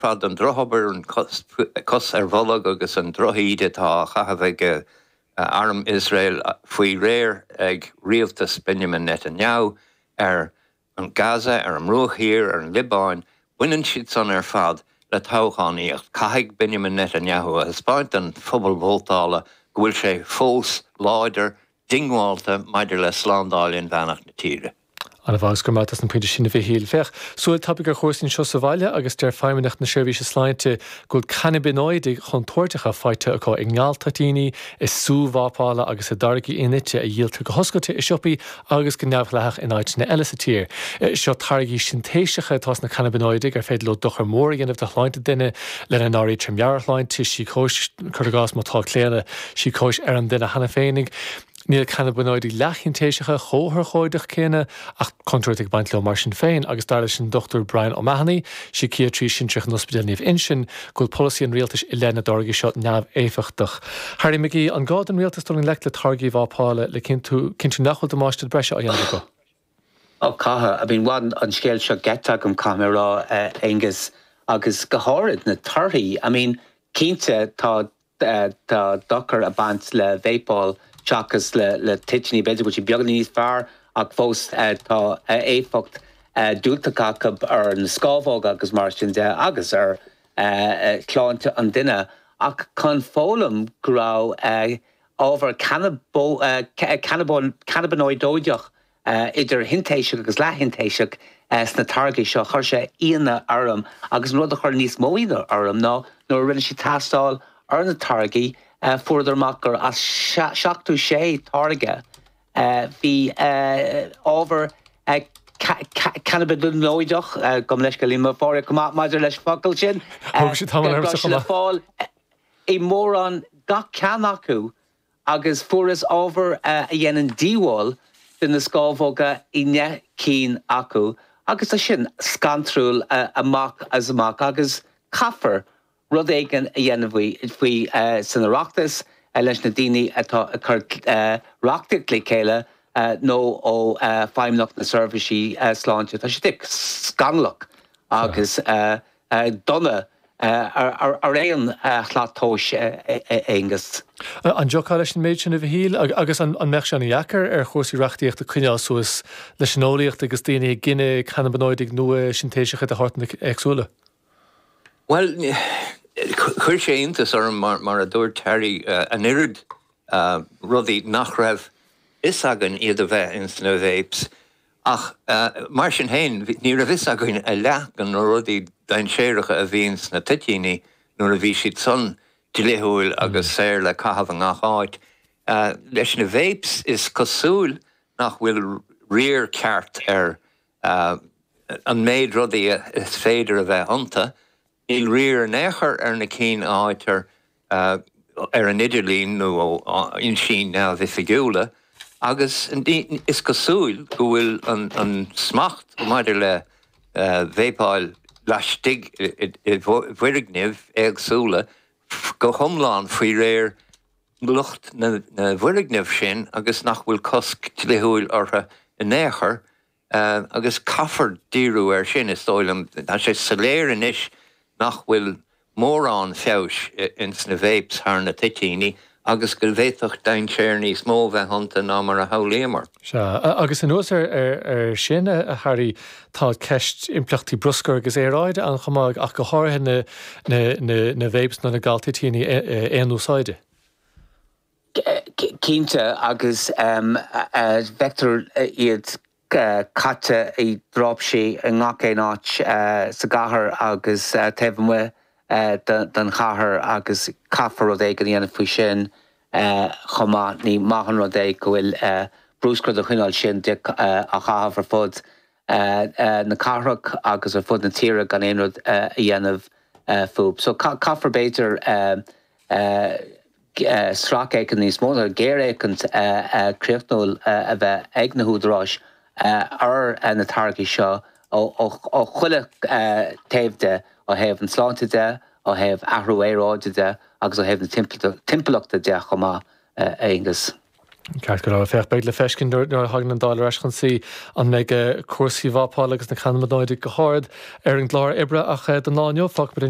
fad an drochobair, cos ar bholg agus an drochíde atá á chaitheamh ag arm Iosrael faoi réir ag rialtas Benjamin Netanyahu ar Gaza, ar an mBruach Thiar, ar an Liobáin, baineann siad san ar fad le toghchánaíocht. Caithfidh Benjamin Netanyahu a thaispeáint don phobal vótála go bhfuil sé fós láidir diongbháilte maidir le slándáil inmheánach na tíre. An-mhaith agus go raibh maith agat as na pointí sin, a Mhichíl. Féach, súil tapaidh ar chúrsaí anseo sa bhaile agus deir Feidhmeannacht na Seirbhíse Sláinte go bhfuil cannabinoidigh chontúirteacha faighte acu i ngaltoitíní, i sú vápála agus i dtáirgí in-nite a dhíoltar go hoscailte i siopaí agus go neamhdhleathach in áiteanna eile sa tír. Seo táirgí sintéiseacha atá sna cannabinoidigh ar féidir leo dochar mór a dhéanamh do shláinte duine, lena n-áirítear meabhairshláinte, síocóis, cur i gcás, má tá claonadh síocóis ar an duine cheana féinig. Níl cannabinoidigh leathshintéiseacha chomh hurchóideach céanna ach contúirt ag baint leo mar sin féin agus dar leis an Dr Brian O'Mahony, Síciatraí Sinsearach in Ospidéal Naomh Uinseann, go bhfuil polasaí an rialtais i leith na dtáirgí seo neamhéifeachtach. Harry McGee, an gá don rialtas dul i ngleic le táirgí vápála le cinnt- cinntiú nach bhfuil damáiste breise á dhéanamh acu? Oh, caithfidh, I mean, bhain an scéal seo geit asam caithfidh mé a rá, a Aonghus, agus go háirid na torthaí. I mean, cinnte tá tá dochar ag baint le vápáil seachas le toitiní. B'fhéidir go bhfuil siad beagáinín níos fearr ach fós tá éifeacht diúltach acu ar na scámhóga agus mar sin de agus ar shláinte an duine. Ach chun foghlaim go raibh ábhar cannabanóideach idir shintéiseach agus leath-shintéiseach, sna táirgí seo. Chuir sé ionadh orm agus an rud a chuir níos mó ionadh orm ná nuair a rinne siad teastáil ar na táirgí fuaireadar amach gur as seachtó sé táirge bhí ábhar cannabanóideach, gabhaim leithscéal le Máire chomh maith maidir leis an focal sin, go raibh sé le fáil i mórán gach ceann acu. agus fuarthas ábhar a dhéanann díobháil do na scámhóga i ndeich gcinn acu agus tá sin scantrúil amach is amach agus caithfear rud éigin a dhéanamh faoi san Oireachtas, leis na daoine atá ag cur reachtaíocht le chéile nó ó Feidhmeannacht na Seirbhísí Sláinte. Tá sé díreach scannalach agus dona ar aon slat tomhais, Aonghus. An dtiocfá leis an méid sin, a Mhichíl? Agus an mbeadh sé an-deacair ar chúrsaí reachtaíochta coinneáil suas leis an eolaíocht agus daoine ag gineadh cannabanoidigh nua sintéiseacha de shórtanna éagsúla? Bhuel, chuir sé iontas orm, mar a dúirt Harry, an oiread rudaí nach raibh fhios againn iad a bheith ins na vapes. Ach mar sin féin, ní raibh fhios againn a leath de na rudaí dainséaracha a bhíonn sna toitíní nuair a bhí siad san dlíthiúil agus saor le caitheamh i ngach áit. Leis na vapes is cosúil nach bhfuil riar ceart ar an méid rudaí is féidir a bheith iontu. Níl riar in aon chor ar na cinn a fhaightear ar an idirlíon nó ó fhoinsí neamhoifigiúla agus is cosúil go bhfuil an smacht maidir le veaipeáil laistigh i bhfoirgnimh éagsúla go hiomlán faoi réir lucht na bhfoirgneamh sin agus nach bhfuil cosc dlíthiúil orthu in aon chor. agus caithfear díriú air sin, is dóigh liom. Tá sé soiléir anois nach bhfuil mórán feabhais ins na Vapes thar na toitíní agus go bhféadfadh dainséar níos mó bheith iontu ná mar a shamhlaíomar. Sea, agus anuas air sin, a Harry, tá ceist impleachtaí bruscair agus aeráide ann chomh maith, ach go háirithe na Vapes nó na galtoitíní aon-úsáide. Cinnte agus feictear iad caite i dtraipisí i ngach aon áit sa gcathair agus taobh amuigh den chathair agus caithfear rud éigin a dhéanamh faoi sin chomh maith. Ní maith an rud é go bhfuil bruscar den chineál sin de á chaitheamh ar fud na cathrach agus ar fud na tíre gan aon rud a dhéanamh fúthu. So caithfear b'fhéidir sracfhéachaint níos mó, nó géarfhéachaint chríochnúil a bheith ag na húdaráis ar na táirgí seo ó chuile taobh de, ó thaobh an tsláinte de, ó thaobh athrú aeráide de agus ó thaobh na timpeallachta de chomh maith, a Aonghus. Ceart go leor, féach, beidh le feiscint nuair a thagann an Dáil ar ais chun suí an mbeidh cúrsaí vapála agus na cannaibionóidigh go hard ar an gclár oibre ach don lá inniu fágfaimid an